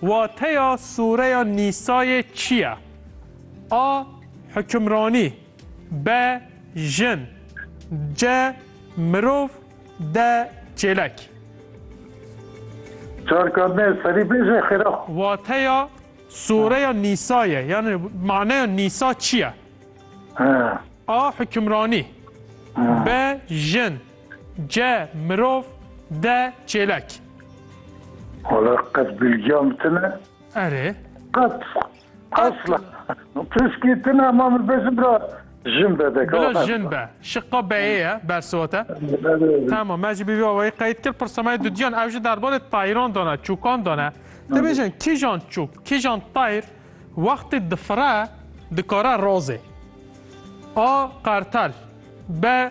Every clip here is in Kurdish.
Wateya sûreya Nîsayê çi ye? A. Hukimranî B. Jin C. Mirov D. Çêlek. Çar karine serî bêje xêra. Wateya sûreya Nîsayê yanî maneya Nîsa çi ye? A. Hukimranî B. Jin Ce, mirov, de, çêlek. Wala qet bilgiya min tine. Erê. Qet. Asla. Piskî tine ma min bêjin bira jin be de. Bila jin be. Şiqa beyê ye bersivate. Tamam me jî bîvî awayî qeyd kir pirsamaya dudiyan ew jî derbarê tayiran dana, çûkan dana. Dibêjin kîjan çûk, kîjan tayir wextê difire dikare razê. A. Qertel B.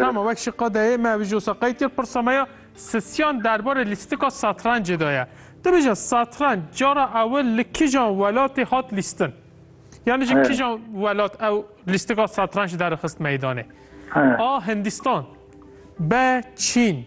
Tama wek şi qadeyê me vijo sa qey tê pirsa me ya sisyan derbarê lîstika satrancê de ye. Tu bêje satranc cara ewil li kijan welatê hat lîstin? Yani ji kijan welat ew lîstika satranc derixist meydanê? A. Hindîstan B. Çîn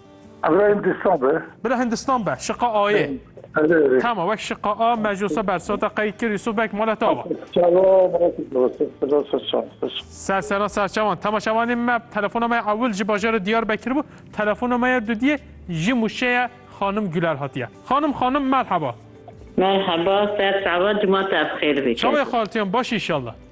Ebra Hindistan be. Bira Hindistan be, şiqa ayê. Tama wek şiqa a mejosa bersota qey kir Yusuf Bek mala tava. Ser sera serçavan. Tama şavanê me telefona me ewil ji bajarê Diyarbekir bû. Telefona me ya dudiyê ji mûşeya xanim Güler hatiye. Xanim xanim merheba. Merheba ser çava cuma te bi xêr bikê. Çavê xaltiyan baş inşallah.